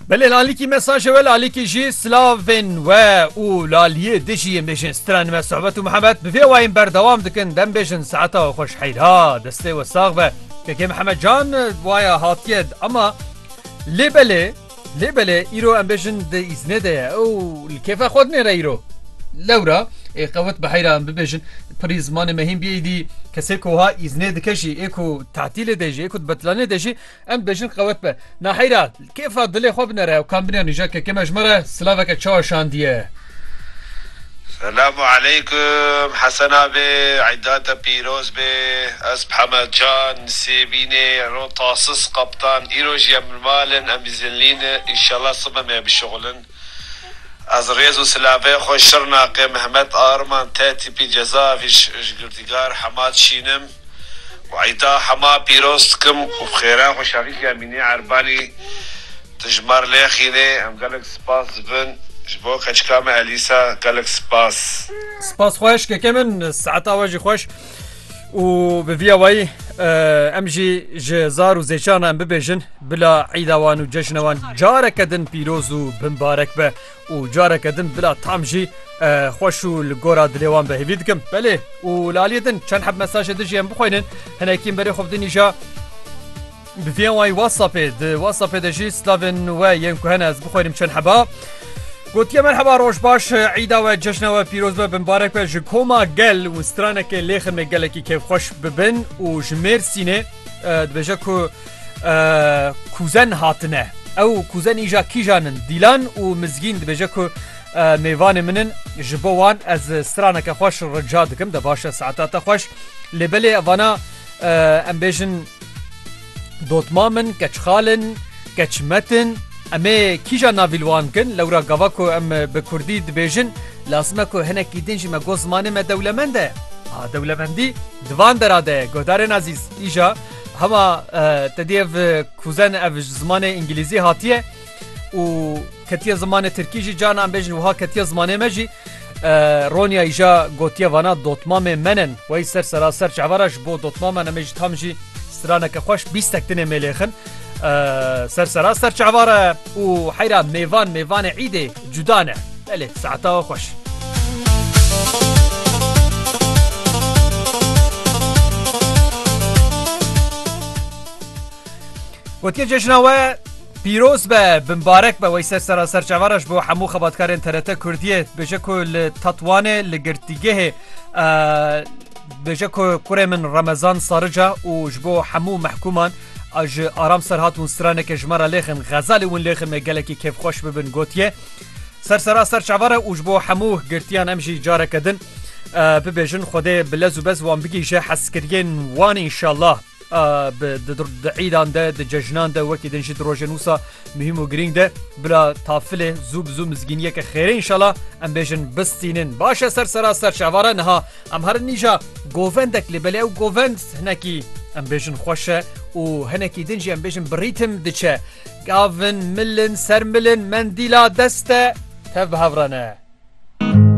Belê lalikî me saje we lalikî jî silavên we û laliyê dijî yên bêjin stran me sohbet û mihemet bi vê wayên berdewam dikin dem bêjin saeta we xweş heyra destê we sax be kekê mihemet can waya hatiye ama lê belê lê belê îro em bêjin di îznê de ye ew li kêfa xwe nêre îro lewra ê qewet bi heyra em bibêjin pirî zimanê mehîn biyê dî kesê koha îznê dike jî ê ku tatilê de jî ê ku betlanê de jî Em dibêjin qewet be. Naheyra, kêfa dilê xwe binere ew kambinya nîja kekê me ji me re silaveke çawa şandiye. Selamu aleykum Hesen abi, Îda te pîroz bê. Ez Phemed Can, Sêbînê, ro tasis qeptan. Îro jî em li mal in, em îzinlî ne. Înşallah sib em ê bişuxulin. Ez rêz û silavê xwe Şirnaqê Mehmet Arman T-Tîpî Cezaevî ji girtîgar Hemad Şîn im. Wayta hema pîroz dikim û bi xêra xwe şerîkê Emînê Erbanî di ji me re lêxînê. Em gelek spas dibin ji bo keçika me Elîsa. Gelek spas. Spas xweş keke min saeta we jî xweş û bi vîya wayî em jî ji zar û zêçarna em bibêjin bila îda wan û ceşna wan careke din pîroz û bimbarek be. û careke din bila tam jî xweş û li gora dilê wan behêvî dikim. Belê û li aliyê din çend heb mesajê din jî em bixwînin hinekî berê xwe din îja bi viyên wayî WhatsAppê di WhatsAppê de jî slavên we yên ku hene ez bixwînim çend heba. Gotiye merheba roj baş îda we cejna we pîroz be binbarek be ji koma gel û stranekê lêximê gelekî kêfxweş bibin û ji mêrsînê dibêje ku Kuzen hatine. Ew kuzen îja kîjan in? Dîlan û Mizgîn dibêje ku mêvanê min in ji bo wan ez straneke xweş rica dikim de baş e saeta te xweş lê belê evana em bêjin dotma min keçxalin keçmetin em ê kîjan navîl wan kin lewra gava ku em bi kurdî dibêjin lazime ku hinekî din jî me got zimanê me dewlemend e a dewlemendî divan dera de godarên ezîz îja Hema te diyev kuzen ev ji zimanê îngilîzî hatiye û ketiye zimanê tirkî jî cana em bêjin wiha ketiye zimanê me jî Ronya îja gotiye vana dotmamê menin wey ser seraser çevara ji bo dotmama em jî tam jî straneke xweş bîstek dinê mêlêxin ser seraster çevara û heyra mêvan mêvanê îdê cuda ne. Belê saeta xweş. Gotiye cejna we pîroz be bimbarek be weyser sera ser çavaraş bo hemû xebatkarên TRT Kurdiye bêje ku li Tatwanê li girtîgehê bêje ku kurê min Remezan Sarica û ji bo hemû mehkûman A ji Aram Serhat hûn straneke ji me re lêxin, xezalê win lêxin me gelekî kêfxweş bibin gotiye. Ser sera ser çavare û ji bo hemû girtiyan em jî careke din bibêjin Xwedê bi lez û bez wan bigihîje hezkiriyên wan înşallah. Di îdan de di cejnan de wekî din jî di rojên wisa muhîm û girîng de bila tafilê zû bi zû mizgîniyeke xêrê înşallah em bêjin bistînin. Baş e ser sera ser çavare niha Em herin nîja govendek lê belê ew govend hinekî em bêjin xweş e û hinekî din jî em bêjin bi rîtim diçe. Gavin, milin, sermilin, mendîla dest e, tev bi hev re ne.